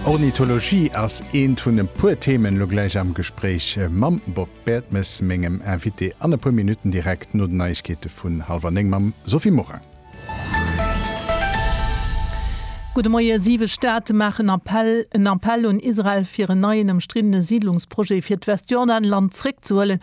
Ornithologie ass eent vun e puer Themen elo gläich am Gespréich mam Bob Bertemes, mengem Invité an e puer Minutten direkt no den Neiegkeete vun hallwer néng mam Sophie Morang. Gudde Moie, Siwe Staate maachen Appell, en Appell un Israel fir en neien ëmstriddene Siidlungsprojet fir d'Westjordanland zréckzehuelen.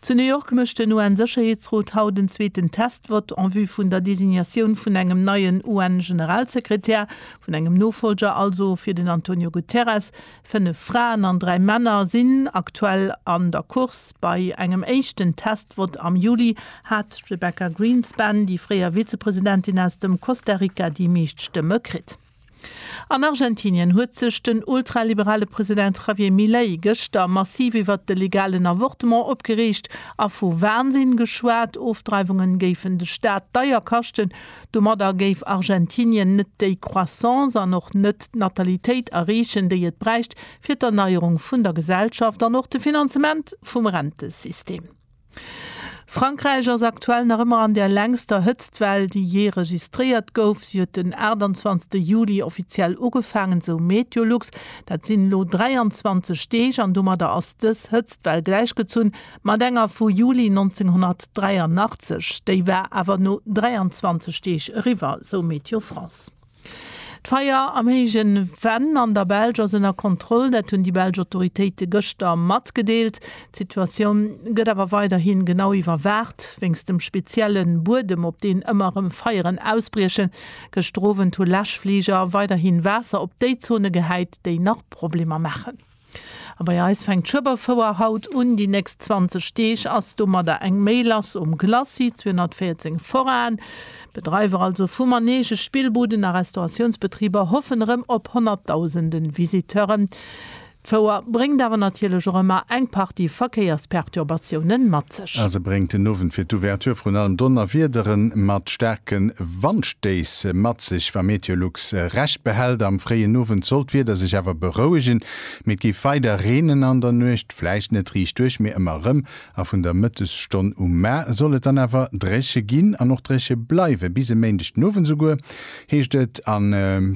Zu New York mécht den UN-Sécherheetsrot haut en zweeten Test-Vott en vue vun der Designatioun vun engem neien UN-Generalsekretär, vun engem Nofolger also, fir den Antonio Guterres. Fënnef Fraen an dräi Männer sinn aktuell an der Course. Bei engem éischten Test-Vott am Juli hat d'Rebecca Greenspan, déi fréier Vizepresidentin aus dem Costa Rica, déi meescht Stëmme kritt. An Argentinien huet sech den ultraliberale President Javier Milei gëschter massiv iwwert de legalen Avortement opgereegt a vu Wahnsinn geschwat. Ofdreiwungen géifen de Staat deier kaschten. Domadder géif Argentinien net déi Croissance an och net d'Natalitéit erreechen, déi et bräicht fir d'Erneierung vun der Gesellschaft an och de Finanzement vum Rentesystem. Frankräich ass aktuell nach ëmmer an der längster Hëtztwell, déi jee registréiert gouf. Si huet den 28 Juli offiziell ugefaangen, sou Meteolux. Dat sinn elo 23 Deeg an domadder ass dës Hëtztwell gläichgezunn mat enger vu Juli 1983. Déi war awer no 23 Deeg eriwwer, sou Météo France. D'Feier am Héijen Venn an der Belsch ass ënner Kontroll, dat hunn déi belsch Autoritéite gëschter matgedeelt. D'Situatioun gëtt awer weiderhi genau iwwerwaacht. Wéinst dem spezielle Buedem, op deen ëmmer erëm Feieren ausbriechen. Gëschter Owend hu Läschfliger weiderhi Waasser op déi Zone gehäit, déi nach Problemer maachen. A bei eis fänkt d'Schueberfouer haut un. Déi nächst 20 Deeg ass domadder eng méi lass um Glacis 214 Forain. D'Bedreiwer also vu Manege, Spillbuden a Restauratiounsbetriber hoffen erëm op honnertdausende Visiteuren. D'Fouer bréngt awer natierlech och ëmmer eng Partie Verkéiersperturbatiounen mat. Sonndeg. A se bréngt den Owend fir d'Ouverture vrun allem Donnerwiedere mat staarke Wandstéiss mat sech. Wa Meteolux Recht behält, am fréien Owend soll d'Wieder sech awer berouegen, mee et géif weider reenen an der Nuecht. Vläicht net riichtduerch, mee ëmmer erëm. A vun der Mëttesstonn u mar soll et dann awer dréche ginn an och dréche bleiwen, bis e Méindeg den Owend esouguer, heescht et. A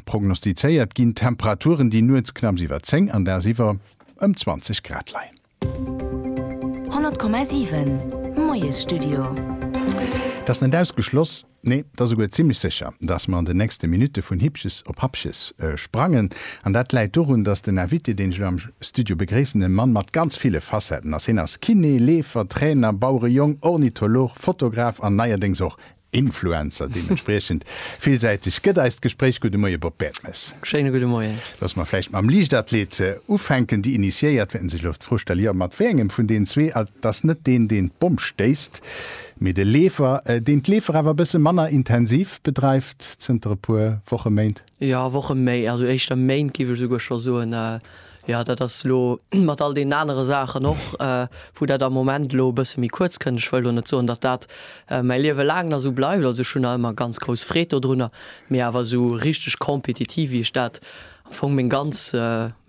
prognostizéiert ginn Temperaturen, déi nuets knapps iwwer 10 an dagsiwwer ëm 20 Grad leien. 100,7 Moiesstudio. Et ass net ausgeschloss, nee, et ass esouguer zimmlech sécher, datt mer an den nächste Minutte vun Hippches op Happches sprangen. An dat läit dorun, datt den Invité, deen ech elo am Studio begréissen, e Mann mat ganz ville Facetten ass. Hien ass Kiné, Leefer, Trainer, Bauerejong, Ornitholog, Fotograf an neierdéngs och Influencer deementspriechend villsäiteg gëtt eist Gespréich. Gudde Moie Bob Bertemes. Schéine gudde Moien. Loosse mer vläicht mam Liichtathlet ufänken. Déi Initiéiert wäerten sech elo d'Fro stelle, jo, mat wéi engem vun den zwee, et ass net deen deen d'Bomm stéisst, mee de Leefer, deen d'Leefer awer e bësse manner intensiv bedreift zënter e puer Woche, Méint? Jo, Wochen méi, also éischter Méint géif ech esouguer scho soen. Jo, dat ass elo mat all deenen anere Saachen och, wou dat am Moment elo e bësse méi kuerz kënnt. Ech wëll elo net soen, datt dat mäi Liewe laang nach esou bleift. Also ech hunn nach ëmmer ganz grouss Freed dodrunner, mee awer esou richteg compétitif, wéi ech dat am Fong meng ganz,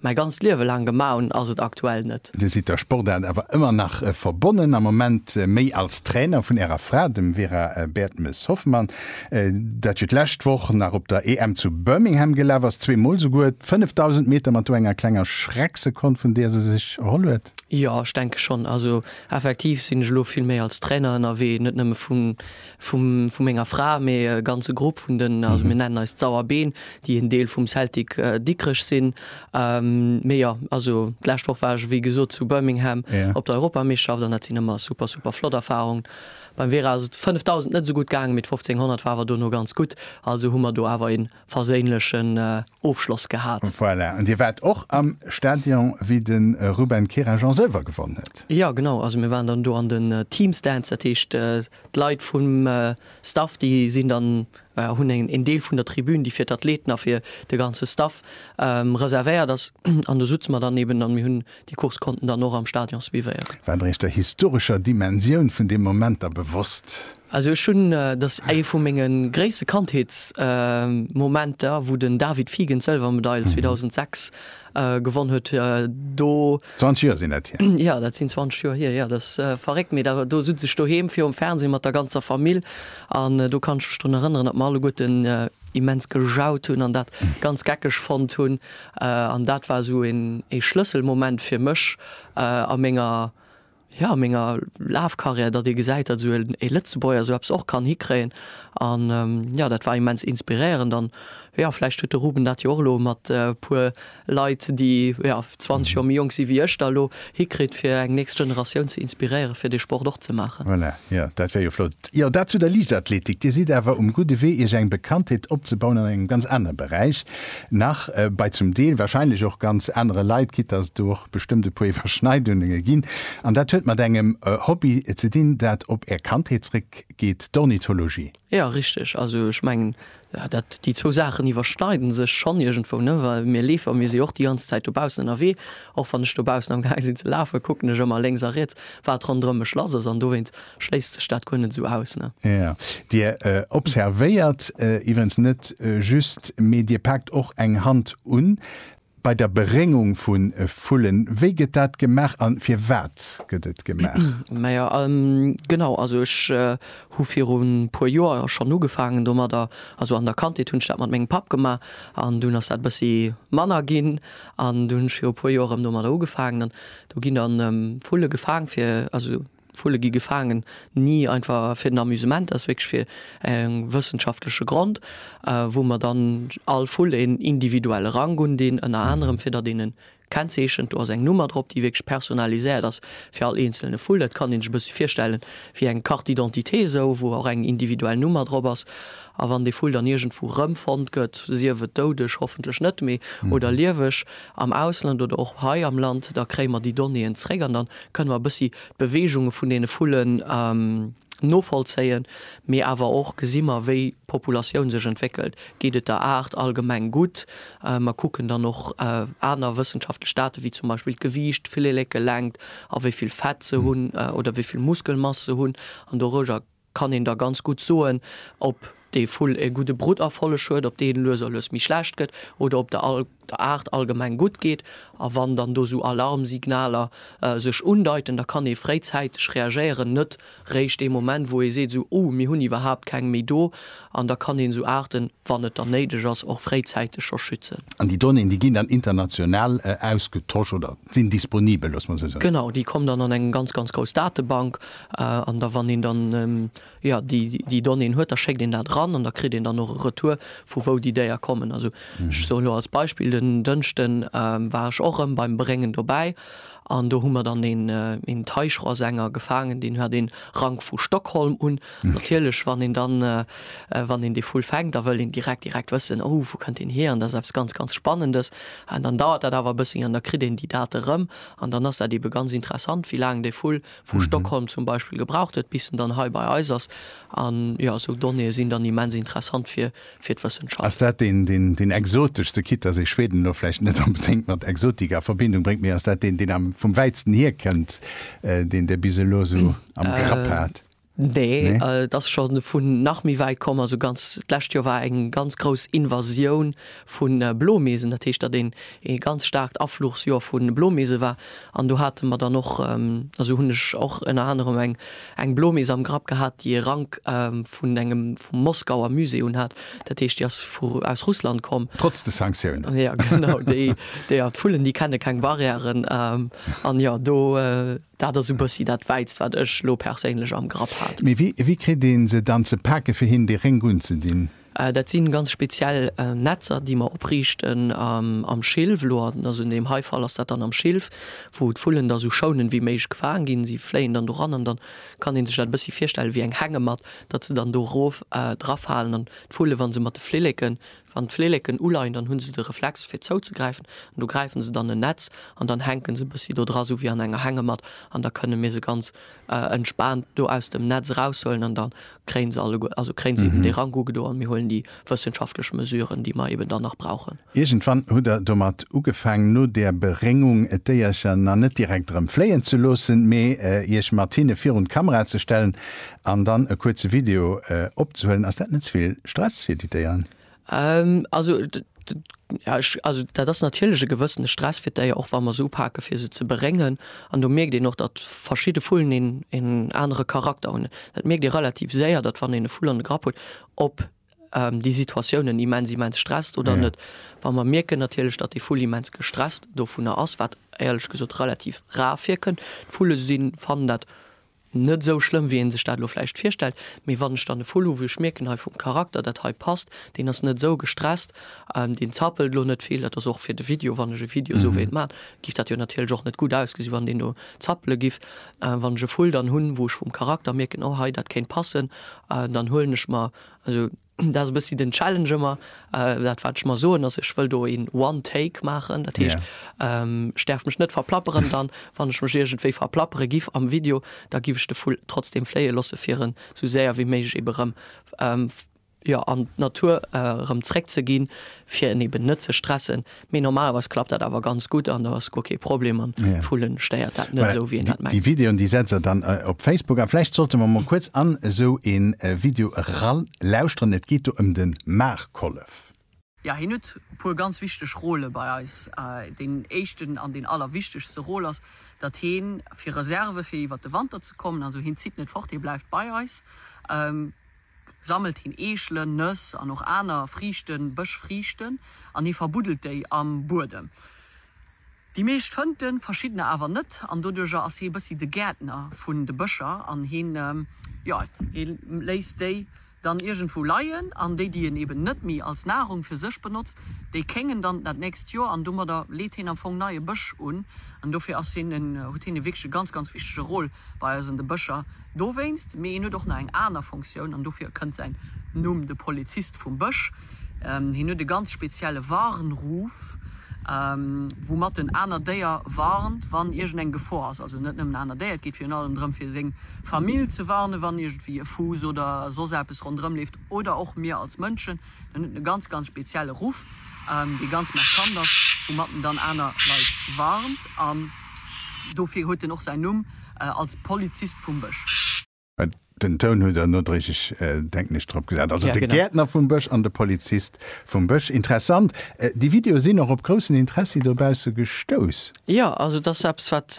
Mäi ganzt Liewe laang gemaach hunn, ass et aktuell net. Dir sidd der Sportaart awer ëmmer nach verbonnen, am Moment méi als Trainer vun Ärer Fra, dem Vera Bertmes-Hoffmann, dat jo d'lescht Woch nach op der EM zu Birmingham gelaf ass, zwee Mol souguer d'Fënnefdausend Meter mat do enger klenger Schrecksekond, vun där se sech erholl huet. Jo, ech denke schonn. Also effektiv sinn ech elo vill méi als Trainer ënnerwee, net nëmme vu vu menger Fra, mee e ganze Grupp vun den, also mir nennen eis d'Sauerbeen, déi en Deel vum Celtic Dikrech sinn. Mee jo, also d'lescht Woch war ech wéi gesot zu Birmingham op der Europameeschterschaft an dat sinn ëmmer super, super flott Erfarungen. Beim Vera ass et 5.000 net esou gutt gaangen, mee d'Fofzénghonnert war awer dono ganz gutt, also hu mer do awer een verséinlechen Ofschloss gehat. Voilà, an Dir waart och am Stadion wéi de Ruben Kerajan Sëlwer gewonnen huet? Jo genau, also mir waren dann do an den Team Stands, dat heescht d'Leit vum Staff déi sinn dann, hunn en Deel vun der Tribün déi fir d'Athleten a fir de ganze Staff reservéiert ass an do sutze mer dann eben an mir hunn déi Course konnten dann och am Stadion suivéieren. Waart Dir Iech der historescher Dimensioun vun deem Moment da bewosst? Also ech hunn, dat ass ee vu menge gréisste Kandheetsmomenter, wou den David Figen d'Sëlwermedail 2006 gewonn huet, do. 20 Joer sinn dat hier. Jo, dat sinn 20 Joer hier, jo, dat ass verréckt, mee do sutz ech doheem virum Fernseh mat der ganzer Famill an do kann ech mech drun erënneren, datt mer alleguerten immens gejaut hunn an dat ganz geckeg fonnt hunn. An dat war esou ee Schlësselmoment fir mech a menger ja, menger Lafkarriär, datt ee gesäit, datt esou ee Lëtzebuerger esou eppes och kann hikréien an jo, dat war immens inspiréierend an jo, vläicht huet de Ruben dat jo och elo mat e puer Leit, déi jo 20 Joer méi jonk si wéi ech da elo, hikritt fir eng nächst Generatioun ze inspiréieren, fir dee Sport och ze maachen. Voilà, jo, dat wär jo flott. Jo, dat zu der Liichtathletik. Dir sidd awer um gudde Wee, Iech eng Bekanntheet opzebauen an engem ganz anere Beräich. nach bei zum Deel wahrscheinlech och ganz anere Leit, quitte dass et do och bestëmmt e puer Iwwerschneidunenge ginn. An dat huet mat engem Hobby ze dinn, dat op Är Kandheet zréckgeet, d'Ornithologie. Jo, richteg. Also ech mengen, dat, déi zwou Saachen iwwerschneide sech schonn iergendwou, ne, well mir Leefer, mir si jo och déi ganz Zäit dobaussen ënnerwee. Och wann ech dobaussen am Gaang sinn ze lafen, kucken ech ëmmer lénks a riets, wat ronderëm mech lass ass. An dowéinst Schléisst sech dat guer net esou aus, ne? Jo, Dir observéiert iwwerens net just, mee Dir paakt och eng Hand un bei der Beréngung vu Vullen. Wéi gëtt dat gemaach a firwat gëtt et gemaach? Majo, genau. Also ech hu virun e puer Joer schonn ugefaangen domadder. Also an der Kandheet hunn ech dat mat mengem Papp gemaach an dunn ass dat e bëssi manner ginn an dunn hunn ech viru e puer Joer erëm domadder ugefaangen an do ginn da Vulle gefaang fir, also Vulle gi gefaangen, ni einfach fir den Amusement, dat ass wierklech fir e wëssenschaftleche Grond, wou mer dann all Vull een individuelle Rank undinn, ënner anerem fir datt een e kennzeechent. Do ass eng Nummer drop, déi wierklech personnaliséiert ass fir all eenzelne Vull. Dat kann een sech e bësse virstellen wéi eng Carte d'identité, esou wou och eng individuell Nummer drop ass. A wann dee Vull dann iergendwou rëmfonnt gëtt, sief et doudeg, hoffentlech net méi, oder lieweg am Ausland oder och hei am Land, da kréie mer déi Donnéeën zréck an da Kënne mer e bëssi d'Beweegunge vun deene Vullen novollzéien, mee awer och gesi mer, wéi d'Populatioun sech entwéckelt. Geet et der Aart allgemeng gutt? Mer kucken dann och aner wëssenschaftlech Date wéi zum Beispill d'Gewiicht, d'Flillekelängt a wéi vill Fett se hunn oder wéi vill Muskelmass se hunn an dorueger kann een da ganz gutt soen, ob dee Vull e gudde Brutterfolleg huet, ob dee lues a lues méi schlecht gëtt oder ob der Aart allgemeng gutt geet. A wann dann do esou Alarmsignaler sech undeiten, da kann ee fréizäiteg reagéieren, net réischt dee Moment, wou ee seet, esou, oh, mir hunn iwwerhaapt keng méi do. An da kann een esou Aarten, wann et dann néideg ass, och fréizäiteg scho schützen. An déi Donnéeën, déi ginn dann international ausgetosch oder sinn disponibel, loosse mer esou soen? Genau, déi kommen dann an eng ganz, ganz grouss Datebank, An da wann een dann, jo, déi, déi Donnéeën huet, da schéckt een dat eran an da kritt een dann och e Retour, vu wou déi Déier kommen. Also ech soen elo als Beispill, den Dënschde war ech och erëm beim Bréngen dobäi an do hu mer dann een, een Teichrohrsänger gefaangen, deen hat ee Rank vu Stockholm un. Natierlech, wann een dann, wann een dee Vull fänkt, da wëll een direkt, direkt wëssen, oh, wou kënnt deen hier an dat ass eppes ganz, ganz Spannendes. An dann dauert dat awer e bëssi an da kritt een déi Date erëm an dann ass dat eebe ganz interessant, wéi laang dee Vull vu Stockholm zum Beispill gebraucht huet, bis en dann hei bei eis ass. An jo, esou Donnéeë sinn dann immens interessant fir d'Wëssenschaft. Ass dat deen, deen deen exoteschste, quitte dass ee Schweden elo vläicht net onbedéngt mat Exotik a Verbindung bréngt, mee ass dat deen, deen am vum wäitsten hierkënnt, deen Dir bis elo esou am Grapp hat? Nee, et ass scho vun nach méi wäit komm. Also ganz d'lescht Joer war eng ganz grouss Invasioun vu Blomeesen. Dat heescht, datt een ee ganz staarkt Afluchsjoer vu Blomeese war. An do hate mer dann och, also hunn ech och ënner anerem eng eng Blomees am Grapp gehat, déi e Rank vun engem vum Moskauer Musée unhat. Dat heescht, déi ass vu aus Russland komm. Trotz de Sanktiounen. Jo, genau. Déi, déi, ja, d'Vullen, déi kenne keng Barrièren. An jo, do Dat ass e bëssi dat Wäitst, wat ech elo perséinlech am Grapp hat. Mee wéi kritt ee se dann ze pake fir hinnen dee Rénk unzedinn? Dat si ganz speziell Netzer, déi mer opriichten am Schilf. Elo ass un deem hei Fall ass dat dann am Schilf, wou d'Vullen da esou schounend wéi méiglech gefaangen ginn. Si fléien dann doran an dann kann ee sech dat e bëssi virstelle wéi eng Hängematt, datt se dann do erof drafalen an d'Vullen, wa se mat de Flilleke Wann d'Flilleken uleien, dann hunn se de Reflex fir zouzegräifen an do gräifen se dann en Netz an dann hänken se e bëssi do dra, sou wéi an enger Hängematt an da kënne mir se ganz entspaant do aus dem Netz eraushuelen an da kréien se alleguer, also kréien se eben dee Rank ugedo an mir huelen déi wëssenschaftlech Mesuren, déi mer eben dann nach brauchen. Iergendwann hutt der domat ugefaang, no der Beréngung d'Déiercher na net direkt erëm fléien ze loossen, mee Iech mat hinne virun d'Kamera ze stellen an dann e kuerze Video opzehuelen, ass dat net ze vill Stress fir déi Déieren? Also dat ass natierlech e gewëssene Stress fir d'Déier, och wa mer se upake fir se ze beréngen. An do mierkt een och, datt verschidde Vullen een anere Charakter hunn. Dat mierkt ee relativ séier, datt wann een e Vull an de Grapp huet, ob déi Situatioun en immens immens stresst oder net. Wa mer mierken natierlech, datt dee Vull immens gestresst dovunner ass, wat éierlech gesot relativ rar virkënnt, d'Vulle sinn fannen dat, Net esou schlëmm wéi een sech dat elo vläicht virstellt, mee wann ech dann e Vull hu wou ech mierken hei vum Charakter dat hei passt, deen ass net esou gestresst, deen zappelt elo net vill, dat ass och fir de Video, wann ech e Video esou wéilt maachen, giff dat jo natierlech och net gutt ausgesinn wann deen do zappele giff. Wann ech e Vull dann hunn wou ech vum Charakter mierken oh hei dat kéint passen, dann huelen ech mer, also. Dat ass e bëssi den Challenge ëmmer. Dat wat ech mer soen ass, ech wëll do een One Take maachen. Dat heescht, ech däerf mech net verplapperen dann. Wann ech mech iergendwéi verplappere giff am Video, da giff ech de Vull trotzdem fléie loosse fir en esou séier wéi méiglech ebe rëm, jo, an d'Natur erëm zréckzeginn, fir en eben net ze stressen. Mee normalerweis klappt dat awer ganz gutt an do ass guer kee Problem an d'Vullen stéiert dat net esou wéi een dat mengt. Déi Videoen déi setzt der dann op Facebook an vläicht sollte mer mol kuerz an esou een Video eran lauschteren. Et geet do ëm den Maarkollef. Jo hien huet puer ganz wichteg Rôle bei eis. Deen éischten an deen allerwichtegste Rôle ass dat hien fir Reserve fir iwwert de Wanter ze kommen. Also hien zitt net fort, hien bleift bei eis. sammelt hien Eechelen, Nëss an och aner Friichten, Bëschfriichten, an hie verbuddelt déi am Buedem. Déi meescht fënnt en, verschiddener awer net, an doduercher ass hie e bëssi de Gäertner vun de Bëscher an hie, jo, hie léisst déi dann iergendwou leien an déi, déi en eben net méi als Nahrung fir sech benotzt, déi kéngen dann dat nächst Joer an domadder leet hien am Fong neie Bësch un an dofir ass hien en, huet hien e wierklech e ganz, ganz wichtege Rôle bei eis an de Bëscher. Dowéinst, mee en huet och nach eng aner Fonctioun, an dofir kënnt säin Numm, de Polizist vum Bësch. Hien huet e ganz spezielle Warnruf, woumat en aner Déier warnt, wann iergendeng Gefor ass. Also net nëmmen aner Déier, et geet virun allem drëm, fir seng Famill ze warnen, wann iergendwéi e Fuuss oder soss eppes ronderëmleeft, oder och mir als Mënschen, En huet e ganz, ganz spezielle Ruff, dee ganz markant ass, woumat en dann aner Leit warnt. An dofir huet en och säin Numm als Polizist vum Bësch. Den Toun hutt der nodréiglech, denken ech, drop gesat. Also de Gäertner vum Bësch an de Polizist vum Bësch. Interessant. Déi Videoe sinn och op groussen Interessi dobausse gestouss. Jo, also et ass eppes, wat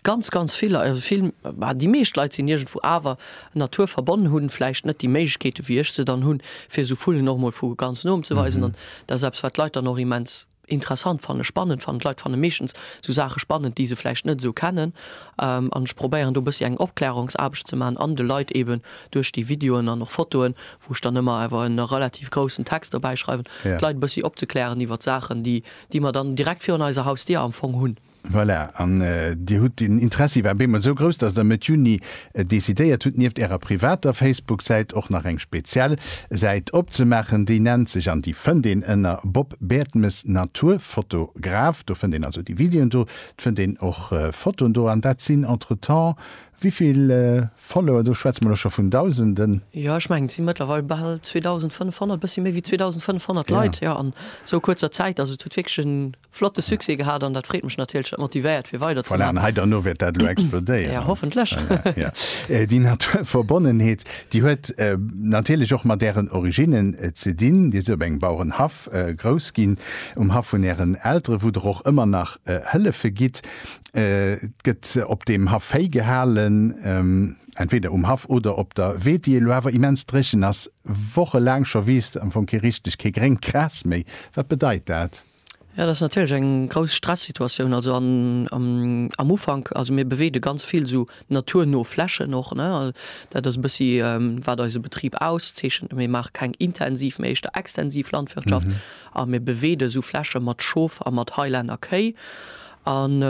ganz, ganz vill, vill, bah, déi meescht Leit sinn iergendwou awer Natur verbonn hunn, vläicht net déi Méiglechkeete wéi ech se dann hunn, fir esou Vullen och emol vu ganz no ze weisen. An dat ass eppes, wat d'Leit dann och immens interessant fannen, spannend fannen. D'Leit fanne meeschtens esou Saache spannend, déi se vläicht net esou kennen. An ech probéieren do e bëssi eng Opklärungsaarbecht ze maachen an de Leit eeben duerch déi Videoen an och Fotoen, wou ech dann ëmmer awer en relativ groussen Text dobäi schreiwen, d'Leit e bëssi opzeklären iwwert Saachen, déi mer dann direkt virun eiser Hausdier am Fong hunn. Voilà, an Dir hutt den Interessi war op eemol esou grouss, dass Der Mëtt Juni decidéiert hutt, nieft Ärer privater Facebook-Säit och nach eng speziell Säit opzemaachen. Déi nennt sech, an déi fënnt een ënner Bob Bertemes Naturfotograf, do fënnt een also déi Videoen do, et fënnt een och Fotoen do, an dat sinn entretemps wivill Follower? Do schwätze mer elo scho vun Dausenden. Jo, ech mengen, et si mëttlerweil bal 2.500, e bëssi méi wéi 2.500 Leit, jo, an esou kuerzer Zäit. Also et huet wierklech en Flotte Succès gehat an dat freet mech natierlech, dat motivéiert fir weider ze maachen. Voilà, an hei derno wäert dat elo explodéieren. Jo, hoffentlech. Voilà, jo. Déi Naturverbonnenheet, déi huet natierlech och mat Ären Originnen ze dinn. Dir sidd op engem Bauerenhaff grouss ginn, um Haff vun Ären Elteren, wou Der och ëmmer nach Hëllefe gitt. Et gëtt op deem Haff Véi gehalen, entweder um Haff oder op der Weed, déi elo awer immens dréchen ass, wochelaang scho wiisst am Fong kee richteg, kee gréngt Gras méi. Wat bedeit dat? Jo, dat ass natierlech eng grouss Stressituatioun. Also an am Ufank, also mir beweede ganz vill esou naturno Flächen och, ne. Dat ass e bëssi wat eise Betrib auszeechent. Mir maache keng intensiv, mee éischter extensiv Landwirtschaft a mir beweede esou Fläche mat Schof a mat Highlander Kéi. An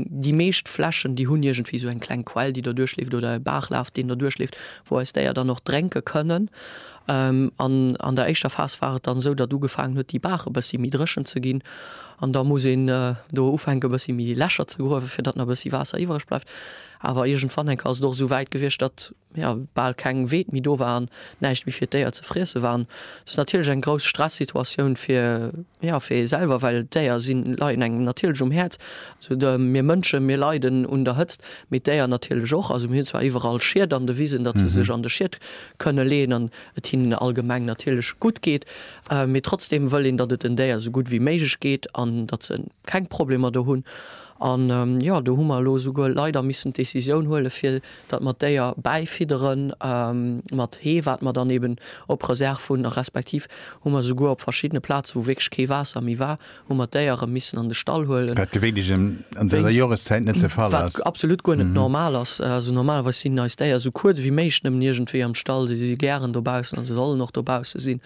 déi meescht Flächen, déi hunn iergendwéi esou eng kleng Quell, déi derduerch leeft oder e Baachlaf, deen derduerch leeft, wou eis Déier dann och drénke kënnen. An an der éischter Phas war et dann esou, datt ugefaangen huet, déi Baach e bëssi méi dréchen ze ginn. An da muss een do ufänken, e bëssi méi Lächer ze gruewen, fir datt nach e bëssi Waasser iwwereg bleift. Awer iergendwann enker ass et och esou wäit gewiescht, datt, jo, bal keng Weed méi do war an näischt méi fir d'Déier ze friesse war. An dat ass natierlech eng grouss Stressituatioun fir, jo, fir ee selwer, well d'Déier sinn, leien engem natierlech um Häerz. Also mir Mënsche, mir leiden un der Hëtzt, mee d'Déier natierlech och. Also mir hunn zwar iwwerall Schiet an de Wisen, datt se sech an de Schiet kënne leeën an et hinnen allgemeng natierlech gutt geet, mee trotzdeem wëll een, datt et den Déier esou gutt wéi méiglech geet an datt se keng Problemer do hunn. An jo, do hu mer elo esouguer leider missen d'Decisioun huele fir datt mer d'Déier bäifiddere mat Hee, wat mer dann eeben op Reserve hunn, a respektiv hu mer esouguer op verschiddene Plaze wou wierklech kee Waasser méi war, hu mer d'Déiere missen an de Stall huelen. Wat gewéinlech an dëser Joreszäit net de Fall ass. Wat absolut guer net normal ass. Also normalerweis sinn eis Déier esou kuerz ewéi méiglech nëmmen iergendwéi am Stall. Si si gären dobaussen a se sollen och dobausse sinn.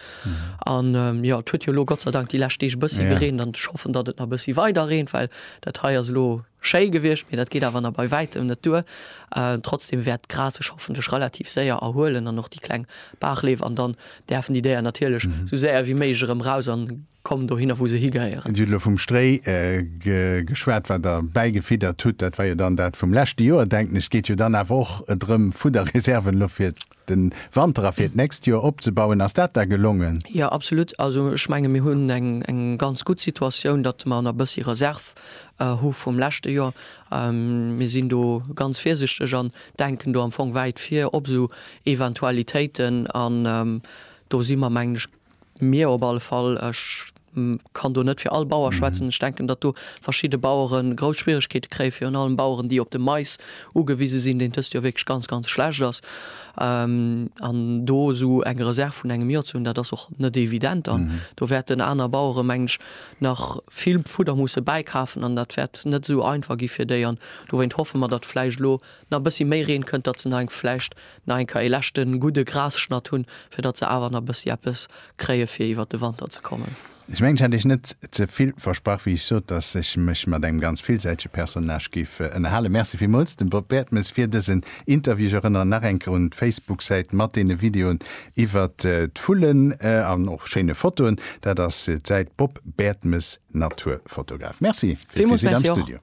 An jo, et huet jo elo gottseidank déi lescht Deeg e bëssi gereent an ech hoffen, datt et nach e bëssi weider reent, well dat hei ass elo schéi gewiescht, mee dat geet awer nach bei wäitem net duer. Trotzdeem wäert d'Gras sech hoffentlech relativ séier erhuelen an och déi kleng Baachleef an dann däerfen déi Déier natierlech esou séier ewéi méiglech erëm raus an kommen dohinner, wou se higehéieren. Et huet elo vum Stréi geschwat, wat Der bäigefiddert hutt. Dat war jo dann dat vum leschte Joer, denken ech. Et geet jo dann awer och drëm, Fudderreserven elo fir de Wanter a fir d'nächst Joer opzebauen. Ass dat da gelongen? Jo, absolut. Also ech menge mir hunn eng ganz gutt Situatioun, datt mer nach e bëssi Reserv hu vum leschte Joer. Mir sinn do ganz virsichteg an denken do am Fong wäit vir op esou Eventualitéiten. An do si mer, mengen ech, Mir op alle Fall. Ech kann do net fir all Bauer schwätzen. Ech denken, datt do verschidde Bauere grouss Schwierigkeete kréien, virun allem Baueren, déi op de Mais ugewise sinn, deen dëst Joer wierklech ganz, ganz schlecht ass. An do esou eng Reserv vun engem Joer ze hunn, dat ass och net evident. An do wäerten aner Bauere, mengen ech, nach vill Fudder musse bäikafen an dat wäert net esou einfach gi fir déi. An dowéint hoffe mer, datt vläicht elo nach e bëssi méi Reen kënnt, datt se nach eng vläicht Nach eng Keier ee leschte gudde Grasschnatt hunn, fir datt se awer nach e bëssi eppes kréie fir iwwert de Wanter ze kommen. Ech mengen, ech hat iech net ze vill versprach, wéi ech sot, datt ech mech mat engem ganz villsäitege Personnage géif ënnerhalen. Merci villmools dem Bob Bertemes fir dësen Interview. Ech erënneren nach eng Kéier un d'Facebook-Säit mat deene Videoen iwwert d'Vullen an och schéine Fotoen. Dat ass d'Säit Bob Bertemes, Naturfotograf. Merci fir d'Visite am Studio.